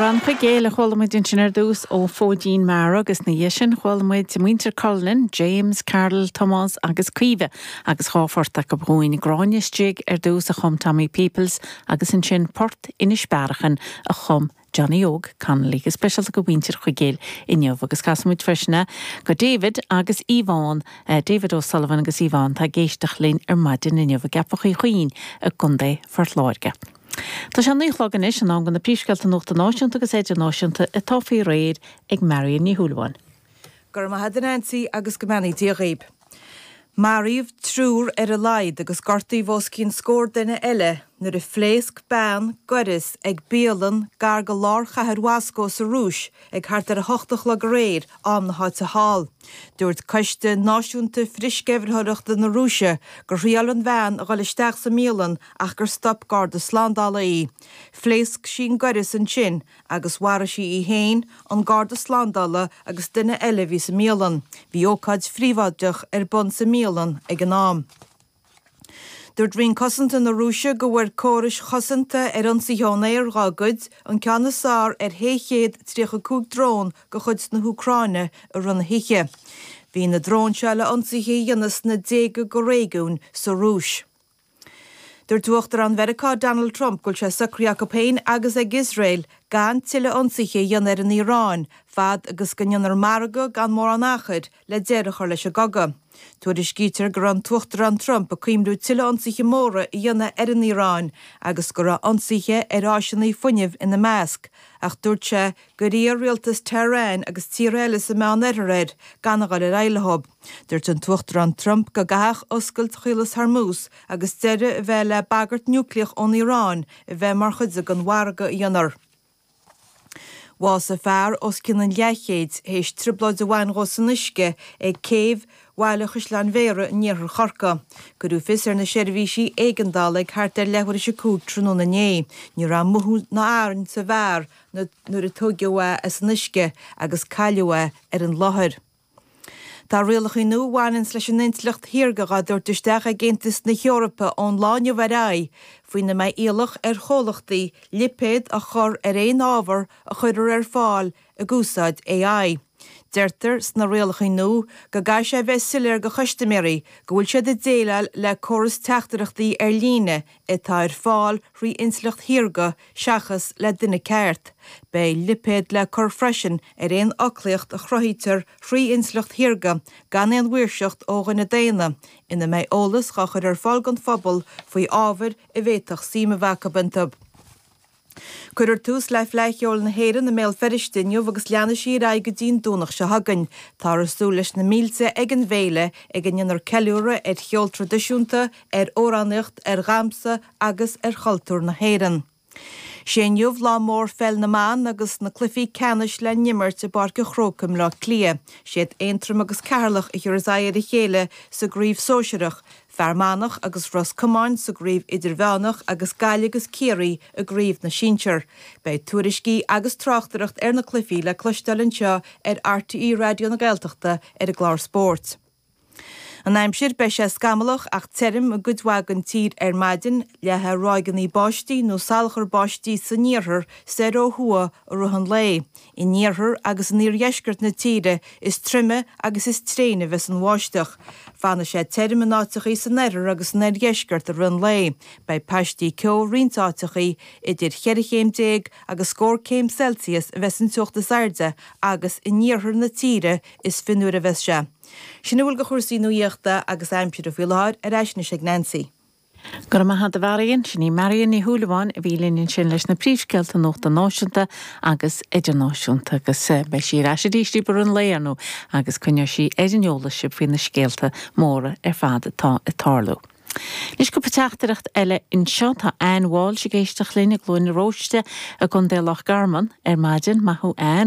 Amhrán Chuigéil a chuala muid ansin ar dtús ó Phóidín Meara agus ina dhiaidh sin chuala muid muintir Cullinan, James, Carol, Tomás agus Caoimhe agus dhá phort acu dhúinn, Gráinne's Jig ar dtús a chum Tommy Peoples agus ansin port Inis Bearachain a chum Johnny Óg Connolly. Go speisialta do mhuintir Chuigéil inniu agus casfaidh muid freisin do David agus Yvonne, David O'Sullivan agus Yvonne atá ag éisteacht linn ar maidin inniu i gCeapach Uí Chuinn i gContae Phort Láirge. Tá sé a naoi a chlog anois, in am do na príomhscéalta nuachta náisiúnta agus idirnáisiúnta, atá faoi réir ag Marion Ní Shúilleabháin. Go raibh maith a'd a Neansaí agus go mbeannaí Dia dhaoib. Maraíodh triúr ar a laghad agus gortaíodh os cionn scór duine eile nuair a phléasc bean gaireas ag bialann gar do lár chathair Mhoscó sa Rúis ag thart ar a 8 a chlog aréir, am na háite thall. Dúirt coiste náisiúnta frithsceimhlitheoireachta na Rúise gur thriáil an bhean a dhul isteach sa mbialann ach gur stop garda slándála í. Phléasc sí an gaireas ansin agus mharaigh sí í féin, an garda slándála agus duine eile a bhí sa mbialann. Bhí ócáid phríobháideach ar bun sa mbialann ag an am. Dúirt Roinn Cosanta na Rúise go bhfuair córais chosanta ar ionsaithe ón aer dhá gcuid, an ceann is fearr ar shé chéad tríocha cúig drón de chuid na hÚcráine i rith na hoíche. Bhí na dróin seo le hionsaithe a dhéanamh sna déaga de réigiúin sa Rúis. Dúirt Uachtarán Mheiriceá Donald Trump go bhfuil sé socraithe acu féin agus ag Iosrael gan tuilleadh ionsaithe a dhéanamh ar an Iaráin fad agus go ndéanfar margadh gan mórán achair le deireadh a chur leis an gcogadh. Tuairiscítear go raibh an tUachtarán Trump ag cuimhniú tuilleadh ionsaithe móra a dhéanamh ar an Iaráin agus go raibh ionsaithe ar áiseanna fuinnimh ina measc ach dúirt sé gur iarr rialtas Tehran agus tíortha eile sa Meán-Oirthear air gan a dhul ar aghaidh leo. Dúirt an tUachtarán Trump go gcaithfeadh oscailt Chaolas Hormuz agus deireadh a bheith le bagairt núicléach ón Iaráin a bheith mar chuid den mhargadh a dhéanfar. Bhásaigh fear os cionn an leathchéid théis trioblóid a bhaint dhó san uisce ag céibh Bhaile Chaisleáin Bhéarra in iarthar Chorcaí. Cuireadh fios ar na seirbhísí éigeandála ag thart ar leathuair is a cúig tráthnóna inné. Ní raibh mothú ná arann sa bhfear nuair a tóigeadh é as an uisce agus cailleadh é ar an láthair. Tá rialacha nua a bhaineanns leis an intleacht shaorga dhá dtabhairt isteach ag Aontas na hEorpa ón lá inniu ar aghaidh, faoina mbeidh iallach ar chomhlachtaí lipéad a chur ar aon ábhar a chuirfear ar fáil ag úsáid AI. Deirtear sna rialacha nua go gcaithfidh sé a bheith soiléir do chustaiméirí go bhfuil siad ag déileáil le córas teachtaireachtaí ar líne, atá ar fáil thrí Intleacht Shaorga seachas le duine ceart. Beidh lipéad le cur freisin ar aon fhoclaíocht a chruthaítear thrí Intleacht Shaorga gan aon mhaoirseacht ó dhuine daonna, ina mbeidh eolas dhá chur ar fáil don phobal faoi ábhair a bhféadfadh suim a bheith acu iontu. Cuirfear tús le Fleadh Cheoil na hÉireann i mBéal Feirste inniu agus leanfaidh sí ar aghaidh go dtí an Domhnach seo chugainn. Táthar súil leis na mílte ag an bhféile, ag a ndéanfar ceiliúradh ar cheol traidisiúnta, ar amhránaíocht, ar dhamhsa agus ar chultúr na hÉireann. Sé inniu lá mór Pheil na mBan agus na cluichí ceannais le n-imirt i bPáirc an Chrócaigh i mBleá Cliath. Siad Aontroim agus Ceatharlach a thiocfas aghaidh ar a chéile sa gcraobh sóisearach, Fear Manach agus Ros Comáin sa gCraobh Idirmheánach agus Gaillimh agus Ciarraí i gCraobh na Sinsear. Beidh tuairiscí agus tráchtaireacht ar na cluichí le cloisteáil anseo ar RTÉ Raidió na Gaeltachta ar an gclár Spóirt. An aimsir, Beidh sé scamallach ach tirim i gcuid mhaith den tír ar maidin, le ráigeanna báistí nó salachar báistí san iarthar soir ó thuaidh i rith an lae. In iarthar agus in iardheisceart na tíre is troime agus is tréine a bheas an bháisteach. Fanfaidh sé tirim in áiteachaí san oirthear agus san oirdheisceart i rith an lae. Beidh paistí ceo i roinnt áiteachaí. Idir cheithre chéim déag agus scór céim Celsius a bheas an teocht is airde agus in iarthar na tíre is fionnuaire a bheas sé. Sin a bhfuil de chúrsaí nuaíochta agus aimsire faoi láthair, ar ais anois ag Nancy. Go raibh maith agat, a Mharion. Sin í Marion Ní Shúilleabháin a bhí linn ansin leis na príomhscéalta nuachta náisiúnta agus idirnáisiúnta agus beidh sí ar ais arís i rith an lae ar ndóigh agus coinneoidh sí ar an eolas sibh faoi na scéalta móra ar fad atá ag tarlú. Anois cúpla teachtaireacht eile anseo. Tá Anne Walsh ag éisteacht linn i gCluain Róiste i gContae Loch Garman ar maidin. Maith thú Anne.